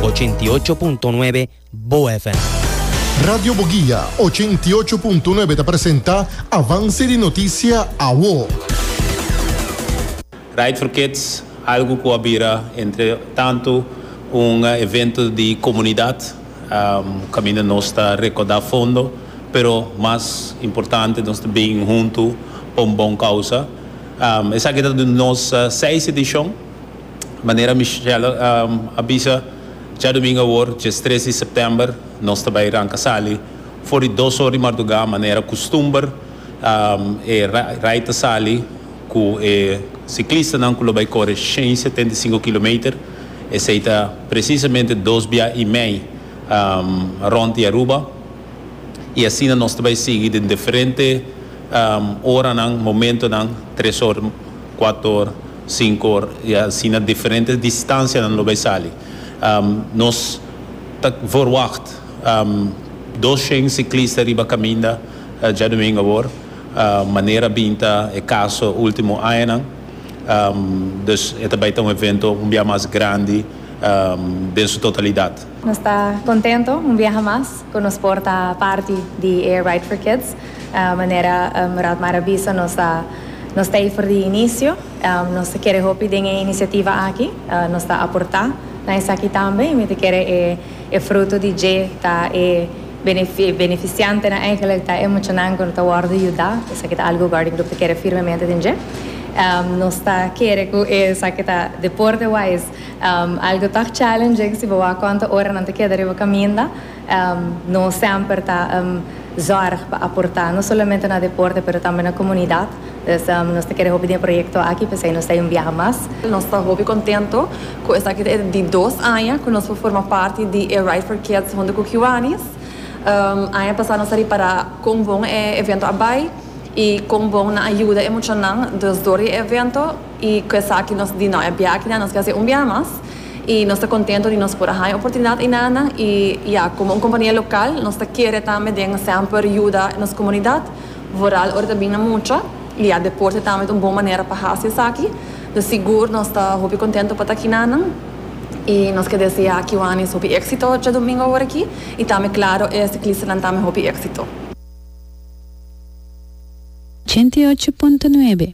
ochenta i ocho punto nuebe Bo FM. Radio Boguia ochenta i ocho punto nuebe ta presenta Avance di Noticia Awo. Ride for Kids, algo cu a bira entre tanto un evento di comunidad, caminda nos ta recorda fondo, pero mas importante nos ta bin hunto pa un bon causa. Esaki ta nos seis edicion. Manera Michelle a bisa djadumingu awor, dies tres di september, nos ta bai ranca sali for di dos or di marduga, manera custumber. E rai ta sali cu e ciclistanan cu lo bai core shen setenta y cinco kilometer, esey ta precisamente dos bia y mei rond di Aruba. Y asina nos ta bai sigui den diferente oranan, momentonan, tres or Cuato or, cinco or y asina diferentes distancianan lo bay sali. Nos ta verwacht doshen ciclista riba caminda djadomingo awor, manera a bin ta e caso e ultimo añanan. Dus e ta bay ta un evento un biaha mas grandi den su totalidad. Nos ta contento un biaha mas cu nos por ta parti di e Ride for Kids. Manera Rad Mar a bisa nos ta nos ta ey for di inicio. Nos ta kere hopi den e iniciativa aki. Nos ta aporta na esaki tambe y mi ta kere e e fruto di dje ta e e beneficiante nan eigenlijk ta e muchanan cu ta wordo yuda. Esaki ta algo cu Garden Club ta kere firmemente den dje. Nos ta kere cu esaki ta deporte wise. Algo ta challenging si bo a konta ora nan ta keda riba kaminda. Nos semper ta zòrg pa aportá no solamente na deporte pero tambe na komunidat. Dus nos ta kere hopi den e proyekto aki p'esei nos ta yui un biaha mas. Nos ta hopi kontento ku esaki ta e di dos aña ku nos por forma parti di e Ride for Kids hunto ku Kiwanis. Aña pasá nos a ripará kon bon e evento a bai i kon bon nan a yuda e muchanan. Dus dor di e evento. I ku esaki nos di nou e biakinan nos ke hasi un biaha mas i nos ta kontento di nos por a haña oportunidat einanan i ya komo un kompania lokal nos ta kere tambe den semper yuda nos komunidat vooral ora ta bin na mucha i ya deporte tambe ta un bon manera pa hasi esaki dus sigur nos ta hopi kontento pa ta akinanan i nos ke desea akiwanis hopi éksito djadomingo awor aki i tambe klaro e siklistanan tambe hopi éksito. Ochenta i ocho punto nuebe.